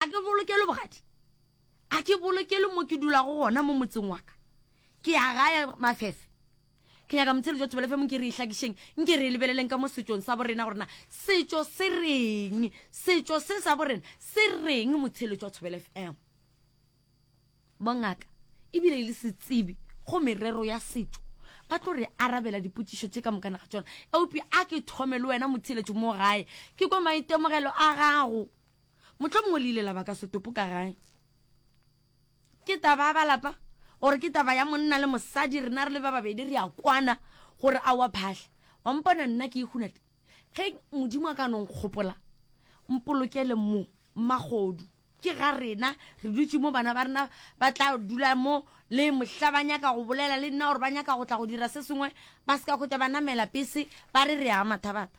a ke bolokelo bogadi a ke bolokelo mo ke dulago gona mo motseng waka ke ya gae mafefe ke nyaka motshelo jwa thobelefe mong ke re itlhakišeng nke re e lebeleleng ka mo setsong sa borena gorena setso se reng setso se sa borena se reng motshelo jwa thobelefe em bongaka ebile e le setsebi go merero ya setso ba tlo re arabela dipotšišo tše ka mokana ga tsona eupša a ke thome le wena motheletšo mo gae ke kwa maitemogelo a gago Mohlomongwe le ile la ba ka setopo ka gae. Ke taba ya balapa, gore ke taba ya monna le mosadi, rena re le ba babedi re a kwana gore a wa phahla. Wa mpona nna ke ikgunate? Ge Modimo a ka no nkgopola, mpolokele mo, Mmagodu. Ke ga rena, re dutše mo, bana ba rena ba tla dula mo, le mohla ba nyaka go bolela le nna gore ba nyaka go tla go dira se sengwe, ba se ka kgotha ba namela pese, ba re re ya mathabata.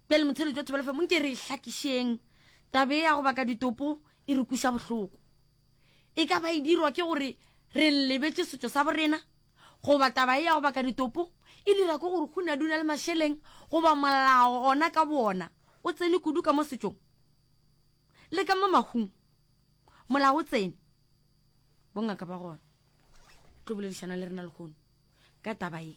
Bjale motheletši wa thobela femo nke re e hlakišeng tabe ya go baka ditopo e re kuša bohloko e ka ba e dirwa ke gore re lebetše setšo sa borena goba taba e ya go baka ditopo e dira ke gore go na duna le mašeleng goba molao ona ka boona o tsene kudu ka mo setšong le ka mo mahung molao o tsene bongaka ba gona tlo boledišana le rena lekgono ka taba e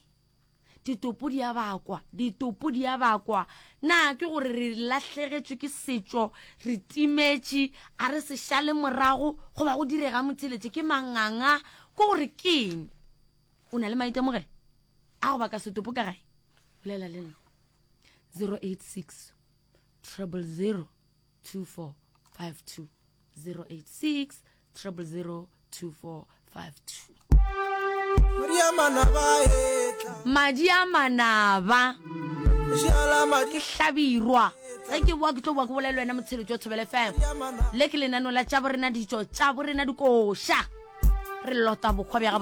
ditopo di a bakwa ditopo di a bakwa na ke gore re lahlegetšwe ke setšo re timetše a re se šale morago go ba go direga motheletše ke manganga ke gore keng o na le maitemogelo a go baka setopo ka gae bolela le nna 086 treble 0 2452 086 000 2452 madi a manaba ke hlabirwa ge ke boa ke tlo boa ke bolele wena motshelo jo thobele fm le ke lenano la tša borena ditso tša borena dikoša re lota bokgwa bja